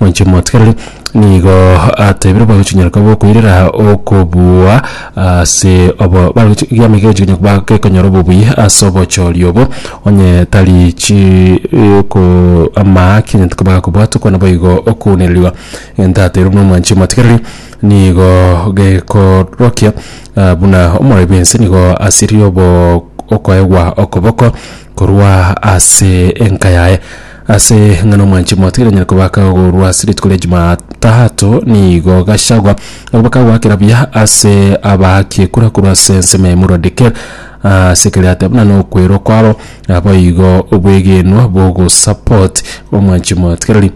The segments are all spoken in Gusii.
Moche motigereri, nigo atebire bagochinyora koba okoirera okobua ase obo bagochi giameye kegochi konya koba gekonyora obobui ase obochori obo, onye tari chi ko amaaki onye tikoba gakobwatwa okwana boigo okounereriwa. Egento atebire buna omwanchi omotigereri nigo gekorokia buna omorori bwense nigo asiririe obo okoegwa okoboko korwa ase enka yaye. Ase ng'a nomwanchi mwatiire nyare kobaka korwa ase rituko ria Jumatatu, nigo Gachagua agobaka goakera buya ase abaaki ekura korwa ase ensemo ya Emurua Dikirr ase ekero yateba buna nokwerwa kwabo naboigo obwegenwa bogosupport omwanchi mwatigari.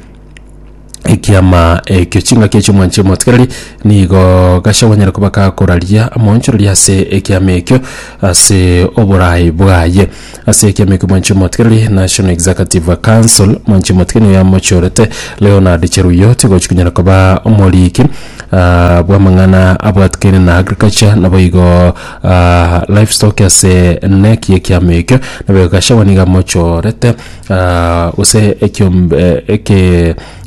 ekiama ekio. Chingaki echi omwanche omotigereri nigo gasha gonyara koba gakoraria amoonchoreria ase ekiama ekio ase oboraai bwaye. Ase ekiama ekio omwanchi omotigereri National Executive Council, omwanchi omotigereri nigo yamochorete Leonard Cheruyot gochi konyara koba omoriki bw'amang'ana abwatikaine na Agriculture naboigo Livestock ase NEC y'ekiama ekio. Nabo igo Gachagua nigo amochorete. gose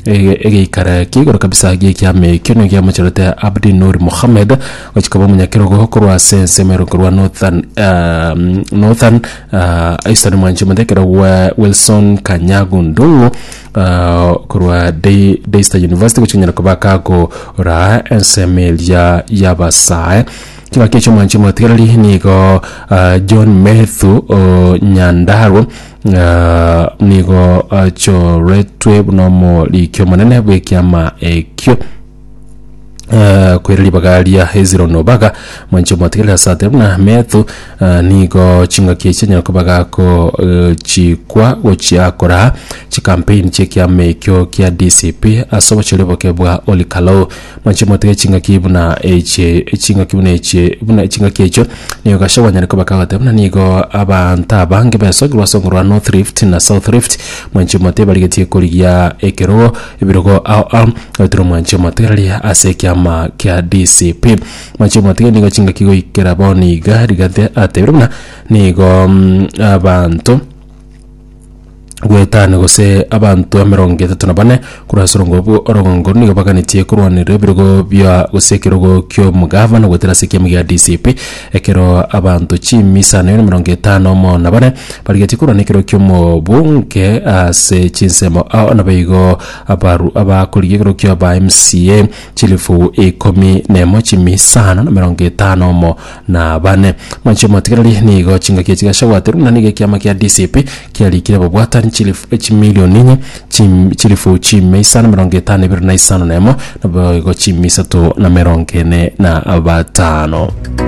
egeikara kia igoro kabisa gi'ekiama ekio nigo giamochorete Abdi Noor Mohamed gochia koba omonyakerogo korwa ase ensemo ere korwa Northern Northern Eastern mwanchi mote ekero Wilson Kanyagu Ndung'u korwa Daystar University gochia konyara koba kagoraa ensemo eria y'abasae. Kegaki ekio mwanchi omotigereri nigo John Methu Nyandarwa. ng'a nigo achoretwe buna omoriki omonene bw'ekiama ekio Eh, kwere ribaga ria hezironi obaga mwancho mwatigere ase atari buna methu eh, nigo chingaki echi chinyara koba gako eh, chikwa gochia koraa chikampeni chi'ekiama ekio kia dcp ase obochori boke bwa olikalo Mwanche motebe chingaki buna echi, chingaki buna echi, buna chingaki echio nigo Gachagua anyare koba kagoteba buna nigo abanto abange baesokerwa ase ongoro rwa North Rift na South Rift. Mwanche motebe barigetie korigia ekerogo ebirogo ao ao goetera omwanche motebe rari ase ekiama kia DCP. Mwanche motebe nigo chingaki goikera bono iga Rigathi atebire buna nigo mm, abanto gwetana gose abanto emerongo etato na bane korwa ase orongo bwo- orogongo nigo baganetie korwaneria ebirogo bia gose ekerogo ki'omogavana goetera ase ekiamo gia DCP ekero abanto chimisa na emerongo etano mo na bare barigetie korwana ekerogo ki'omobunge ase chinsemo ao nabo igo abaru abakorigia ekerogo kia ba MCA chilifu ikomi na emo chimisano na emerongo etano mo na abane. Manche omotigereri nigo chingaki echi chigashabwaterwe, na nigo ekiama kia DCP kiarikire babwatani chilifu chimilioni inye chim- chilifu chimia isano na emerongo etano ebere na isano na emo, naboigo chimia isato na emerongo ene na batano.